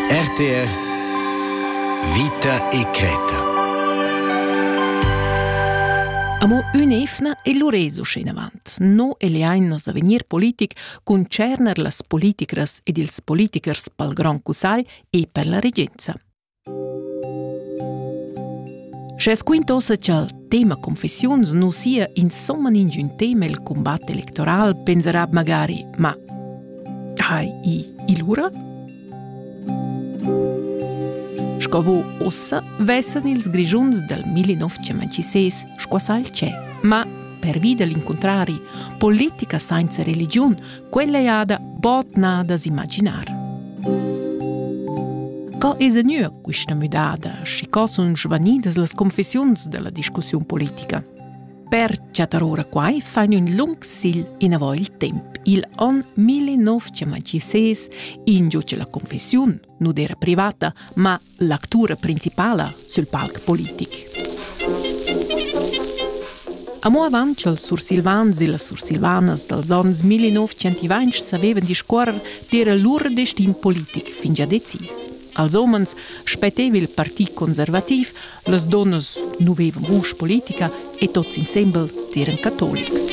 RTR Vita e creta Amo ün'efna e l'uresu schinavant. No e leainnos a vegnir politic concerner las politicras ed ils politichers pel Grand Cussagl e per la regenza. Sche squintosa cha'l tema confessiuns nu sia insomma ingün tema il cumbat electoral, pensarà magari «Ma hai i il ura?» Sco vo ossa vessan ils Grischuns dal 1956 squassà il tschè. Ma, pervi da l'incuntrari, politica sainza religiun Quella ei ada bod nà da s'imaginar. Co es gnüa quista müdada, schi co sun svanidas las confessiuns dalla discussiun politica? Per chattar ora quai fain ün lung sigl inavò il temp. Il on 1926 ingiuce la confessiun, nu d'era privata, ma l'actura principala sül palc politic. Amo avant cha'ls sursilvans e las sursilvanas dals ons 1920 savevan discuorrer d'eira lur destin politic fingià decis. Als homens spetteva il partit conservativ, las donnas nu vevan vusch politica e tots insembel eran catolics.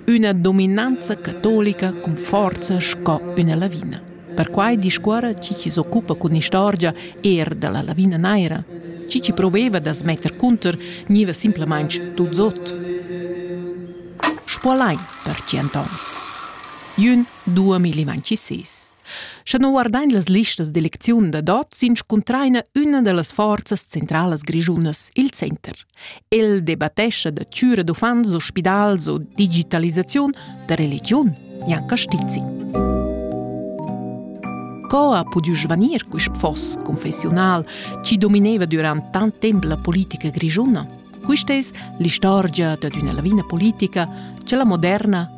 üna dominanza catolica cun forza sco üna lavina. Perquai discuorra chi chi s'occupa cun istorgia eir da la lavina naira. Chi chi proveva da smetter cunter gniva simplamaing tuts ot. Spuolain per tschient ons. Jün 2026. Scha non guardain las listas d'elecziun da dot, s'inscuntraina üna da las forzas centralas grischunas, il center. El debattescha da chüra d'uffants u spidals u digitalisaziun da religiun, Jan Castizi. Co ha pudü svanir quist foss confessiunal chi domineva durant tant temp la politica grischuna? Quista es l'istorgia dad üna lavina politica cha la moderna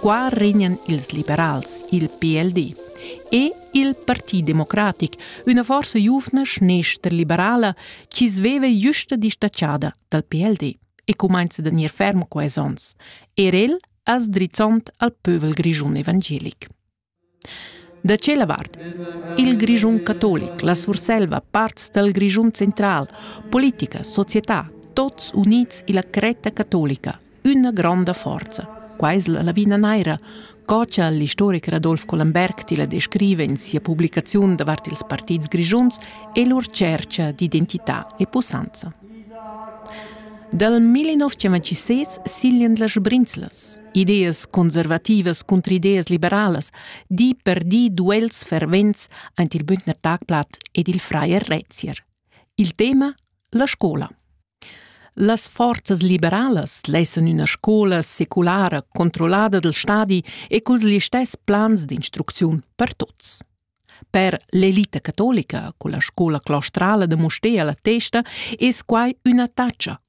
Qua regnan ils liberals, il PLD, e il Parti Democratic, üna forsa giuvna schnestra-liberala chi sveva justa distatschada dal PLD e cumainza da gnir ferm quais ons, er el as drizzond al pövel grischun evangelic. Da tschella vart il Grischun catolic, la Surselva, parts dal Grischun central, politica, società, tots units illa cretta catolica, üna gronda forza. Quai es la lavina naira, co cha l'istoricher Adolf Collenberg tilla descriva in sia publicaziun davart ils partits grischuns e lur tschercha d'identità e pussanza. Dal 1956 siglan las Brinzlas, ideas conservativas cunter ideas liberalas, di per di duels fervents aint il Bündner Tagblatt ed il Freier Rezier. Il tema la scola. Las forzas liberalas lessan üna scola seculara controllada del stadi e culs listess plans d'instrucziun per tuts. Per l'elita catolica, con la scola claustrala de Mustea la testa, es quai üna taccia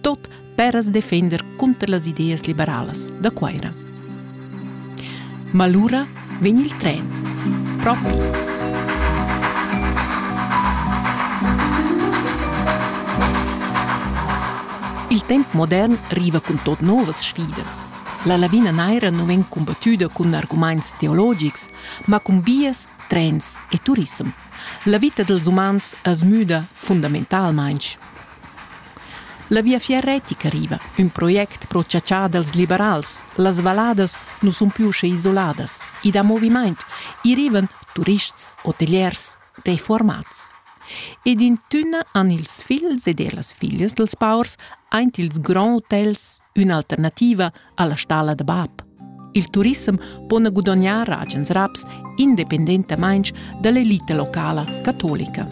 tot per as defender cunter las ideas liberalas da Cuaira. Ma lura vegn il tren. Propi. Il temp modern riva cun tot novas sfidas. La lavina naira non vegn combattuda cun arguments teologics, ma cun vias, trens e turism. La vita dels umans es müda fundamentalmaing. La Viafier retica riva, ün project pro chatschar dals liberals. Las valladas nu sun più sche isoladas. I dà movimaint. I rivan turists, hoteliers, reformats. Ed in tünna han ils figls ed ellas figlias dals paurs aint ils grands hotels ün'alternativa alla stalla da bab. Il turissem po ne gudognar agens raps independentamain dall'elite locala catolica.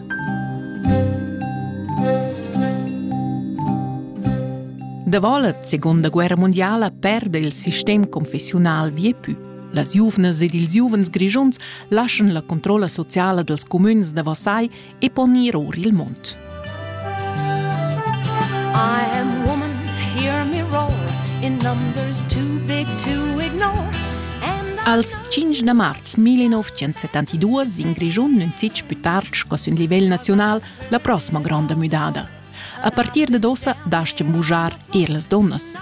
Davolet, seconda guerra mondiala, perde il sistem confessiunal viepü. Las giuvnas ed ils giuvens grischuns lascian la controlla sociala dels comüns da Versailles e pon ir or il mund. I am woman, hear me roar, in numbers too big to ignore. Als 5 da marz 1972 in Grischun nun fitg più tard sco sün livel naziunal la prossima gronda müdada. A partir dad ossa dastgan bugiar er las donnas.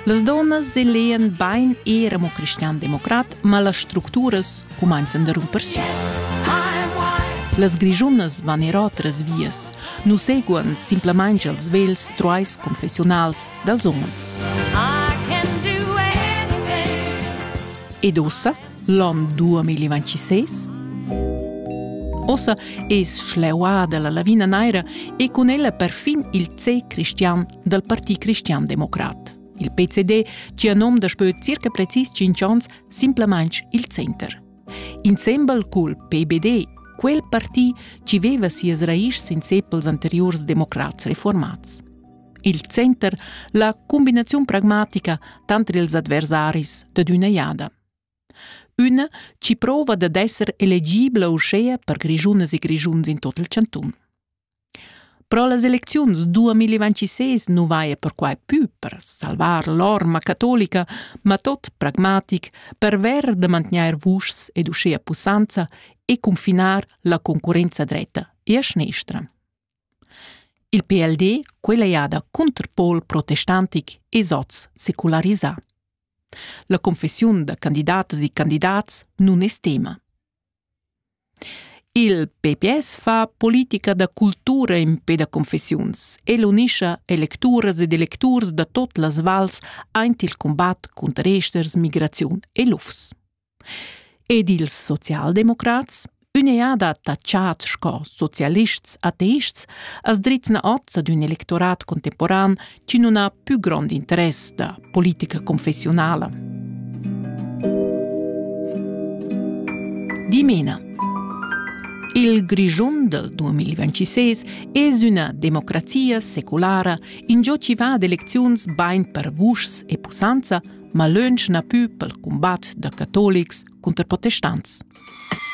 Las donnas elean bain era mo cristian-democrat, ma las structuras cumanzan da rumper suas. Las grigiunas van er otras vias, nu seguan simplamain als vels truais confessionals dels umens. Ed ossa L'on 2026 Ossa es schleuada la lavina naira e cun ella perfin il C cristian dal Parti cristian-democrat. Il PCD, cia nom daspö circa precis 5 ans, simplamaing il Center. Insembel cul PBD, quel parti ci veva sias raischs in sepels anteriurs democrats reformats. Il Center, la combinaziun pragmatica tanter ils adversaris dad üna jada. Üna chi prouva dad esser elegibla uschea per grischunas e grischuns in tot il chantun. Pro las elecziuns 2026 nu vaja perquai pü per salvar l'orma catolica, ma tot pragmatic perver da mantgnair vuschs ed uschea pussanza e cunfinar la concurrenza dretta e a schnestra. Il PLD quella jada Cunterpol protestantic es hoz secularisà. La confessiun da candidatas e candidats nun es tema. Il PPS fa politica da cultura in pe da confessiuns e l'unischa electuras ed electurs da tot las vals aint il combat cunter esters, migraziun e lufs. Ed ils socialdemocrats, ün'eada da chat sco socialists ateists, as drizzna hoz ad ün electorat contemporan chi nun ha pü grond interess da politica confessiunala. Dimena. Il Grischun del 2026 es üna democrazia seculara, ingio chi va ad elecziuns bain per vuschs e pussanza, ma lönch na pü pel cumbat da catolics cunter protestants.